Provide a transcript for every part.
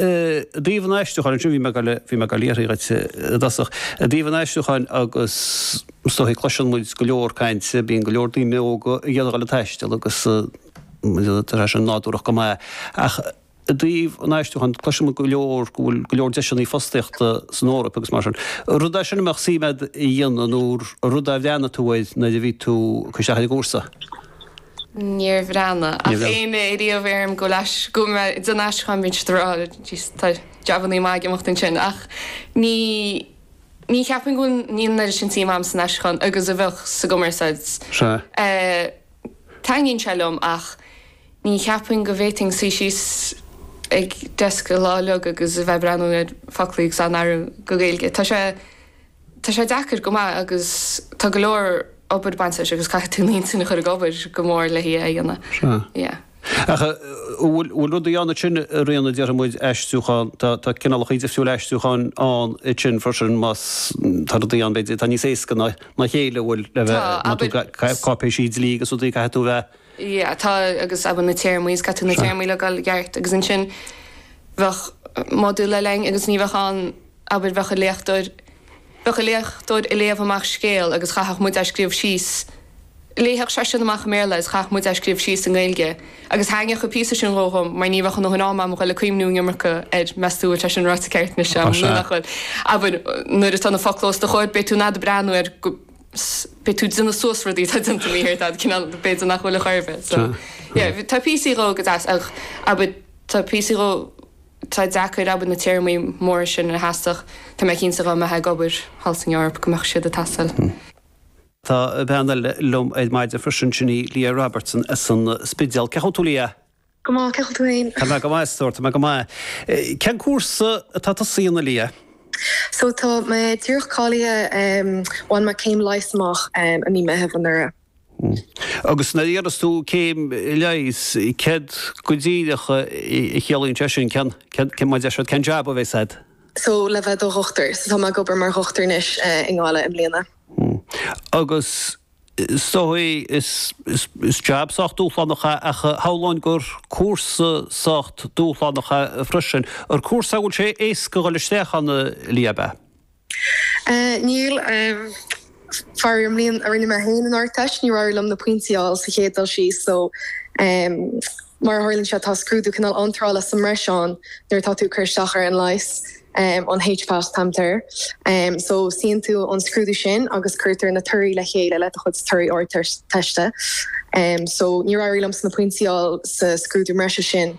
I dtaobh an aistriúcháin, ansin, bhí mé ag, bhí mé ag, le fiafraí dhíot i dtosach, i dtaobh an aistriúcháin agus, is dóigh, cloiseann muid go leor cainte, bíonn go leor daoine óga ag iarraidh dul ag taisteal agus tá sé sin nádúrach go maith ach i dtaobh an aistriúcháin, cloiseann muid go leor go bhfuil go leor deiseanna fostaíochta san Eoraip agus mar sin. Rud é sin a mbeadh suim agat a dhéanamh nó rud a bhreathnaigh tú air nuair a bhí tú ag cur isteach ar an gcúrsa? Níor bhreathnaigh ach bhí muid ariamh, airím go mbíonn na haistriúcháin. Tá jab agam iad siúd a rá, tá jabannaí maith ag imeacht ansin, ach ní cheapaim go bhfuil níl an oiread sin suim agam san aistriúchán agus a bheadh sa gcumarsáid. Taitníonn sé liom ach ní cheapaim go bhféadfainn suí síos ag deasc chuile lá beo agus a bheith ag breathnú ar foclaí agus á n-athrú go Gaeilge. Tá sé. Tá sé deacair go maith agus tá go leor obair ag baint leis agus caithfidh tú d'intinn a chur ag obair go mór le hí a dhéanamh. Ach an bhfuil rudaí ann ansin ar ndóigh nuair a déarfas muid aistriúchán, tá cineálachaí difriúil aistriúcháin ann ansin freisin más, tá rudaí ann, b'fhéidir, atá níos éasca ná a chéile a bhfuil le bheith, má tú, cáipéisí dlí agus rudaí, caithfidh tú bheith. Yeah, tá agus abair na téarmaí, caithfidh tú na téarmaí a fháil i gceart agus ansin bheadh modúl le léinn agus ní bheadh ann, abair, bheadh an léachtóir, bheadh an léachtóir ag léamh amach scéal agus chaithfeadh muid é a scríobh síos, léifeadh seisean amach i mBéarla agus chaithfeadh muid é a scríobh síos i nGaeilge agus thaitníodh an píosa sin liom mar ní bheadh mo dhóthain ama agam a dhul ag cuimhniú an iomarca air, meas tú an sé sin ráite ceart anois, nó nach bhfuil? Abair, nuair atá na focla os do chomhair, beidh tú in ann iad a breathnú air, beidh tú ag déanamh suas rudaí atá déanta mícheart agat, cineál, b'fhéidir nach bhfuil a chor ar bith, so, yeah, tá píosaí dhó go deas ach, abair, tá píosaí dhó. Tá deacair, abair, na téarmaí móra sin a theastódh, tá mé cinnte, dá mbeithfeá ag obair thall san Eoraip, go mbeadh siad ag teastáil. Tá bean eile liom ag maidin freisin, sin í Leah Robertson as an Spidéal. Cén chaoi a bhfuil tú, Leah? Go maith, cén chaoi a bhfuil tú féin? Tá mé go maith, a stór, tá mé go maith. Cén cúrsa atá tusa a dhéanamh, a Leah? So, tá mé díreach cáilithe, bhain mé céim leighis amach i mí Meithimh anuraidh. Agus nuair a dhéanfas tú céim leighis, céard go díreach a chiallaíonn sé sin? Cén, cén, cén, mar a deir siad, cén jab a bheas agat? So, le bheith do dhochtúir. So tá mé ag obair mar dhochtúir anois i nGaillimh i mbliana. Agus is dóigh, is, is, is jab sách dúshlánach é ach shamhlóinn gur cúrsa sách dúshlánach é freisin. Ar cúrsa a bhfuil sé éasca a dhul isteach ann, Leah, a. Níl, faraor. An bhliain a rinne mé féin an Ardteist, níor éirigh liom na pointí a fháil sa chéad dul síos so mar a tharlaíonn sé, tá scrúdú cineál iontrála sa mbreis ann nuair atá tú ag cur isteach ar an Leigheas, an HPAT a tugtar air. So suíonn tú an scrúdú sin agus cuirtear na torthaí le chéile le do chuid torthaí Ardteiste. So níor éirigh liomsa na pointí a fháil sa scrúdú breise sin.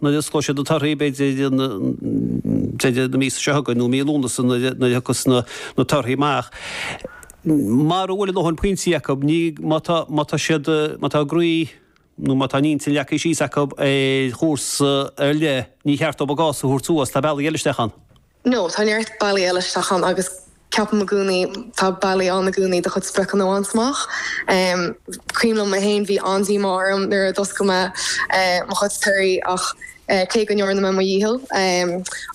nuair a osclóidh siad na torthaí, b'fhéidir ag deireadh na míosa seo chugainn nó mí Lúnasa nuair a thiocfas na torthaí amach. Mara bhfuil a ndóthain pointí acu, ní, má tá, má tá siad, má tá a gcroí nó má tá a n-intinn leagtha síos acu ar chúrsa ar leith, ní ceart dóibh a gcás a thabhairt suas, tá bealaí eile isteach ann. Ó, tá neart bealaí eile isteach ann agus ceapaim i gcónaí tá bealaí ann i gcónaí do chuid spriocanna a bhaint amach. Cuimhin liom mé féin, bhí an-díomá orm nuair a d'oscail mé mo chuid torthaí ach cé go ndearna mé mo dhícheall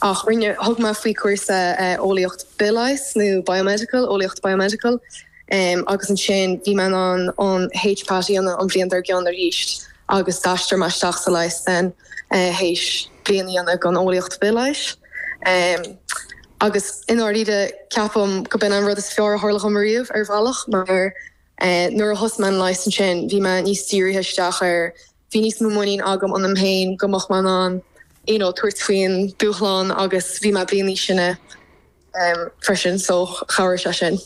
ach rinne, thug mé faoi chúrsa eolaíocht bithleighis nó biomedical, eolaíocht biomedical, agus ansin bhí mé in ann an HPAT a dhéanamh an bhliain dár gcionn arís. agus d'aistrigh mé isteach sa leigheas ansin théis bliain a dhéanamh den eolaíocht bhithleighis agus, i ndáiríre, ceapaim gurb in an rud is fearr a tharla dhom riamh, ar bhealach, mar nuair a thosaigh mé an leigheas ansin, bhí mé níos dírithe isteach air, bhí níos mó muinín agam ionam féin go mbeadh mé in ann you know tabhairt faoin dúshlán agus bhí mé bliain níos sine freisin so chabhraigh sé sin.